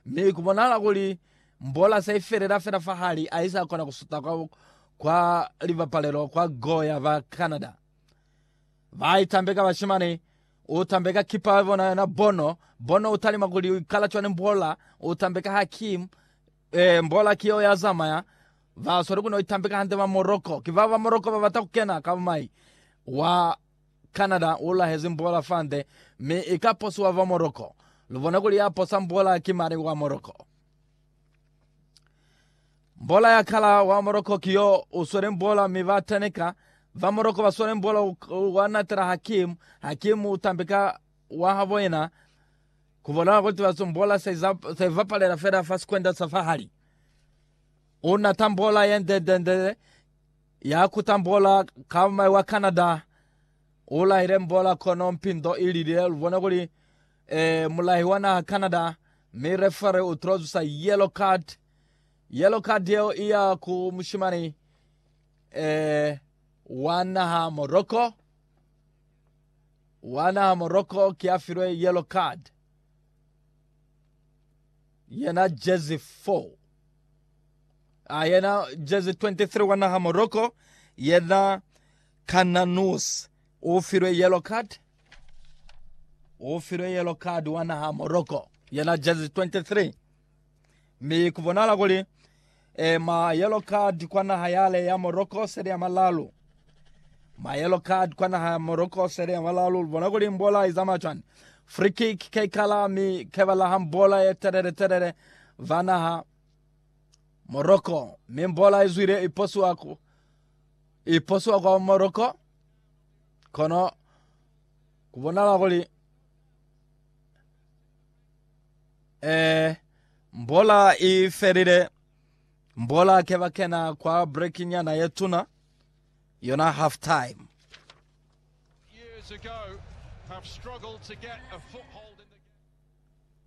Mi ku bonahala kuli Mbola se i felela fela fa hali a isa kona ku suta kwa, kwa libapalelo kwa go ya ba Canada. Ba i tambeka bashimani, u tambeka kipa ya bona yona Bono, Bono u talima kuli u ikala cwani Mbola, u tambeka Hakim, eh, Mbola ki yo ya zamaya, ba sweli ku no itambeka hande ba Morocco, ki bao ba Morocco ba bata ku kena ka bumai, wa Canada u lahezi mbola fande mi i ka posiwa fa Morocco. Lu bona kuli ya posa mbola ki mani wa Morocco. Mbola ya kala wa Morocco ki yo u swele mbola mi ba teneka. Ba Morocco ba swele mbola wa natela Hakim. Hakim u tambe ka wa habo yena. Ku bonala kuli tibazo mbola sa i bapalela fela fa sikwenda sa fahali. U nata mbola ye ndendendele. Ya ku tambola ka mai wa Canada u lahile mbola kono mpindo i lilile lu bone kuli e mulahi wa naha Canada mi referee u tilo zusa yellow card. Yellow card yeo i ya ku mushimani e wa naha Morocco. Wa naha Morocco ki ya filwe yellow card yena jersey 4. A yena jezi 23 wa naha Morocco yena Kananous o filwe yellow card o filwe yellow card wa naha Morocco yena jezi 23 mi ku bonala kuli e, ma yellow card kwa naha yale ya Morocco sele ya malalu ma yellow card kwa naha ya Morocco sele ya malalu bona kuli mbola izama chwani free kick ke kala mi ke bala ham bola ye telele telele va naha Moroko, mi mbola izwile iposuwa ku iposuwa kwa Moroko kono kubonala kuli eh mbola ifelile mbola ke bakena kwa break nyana yetuna yona half time years ago have struggled to get a foothold in the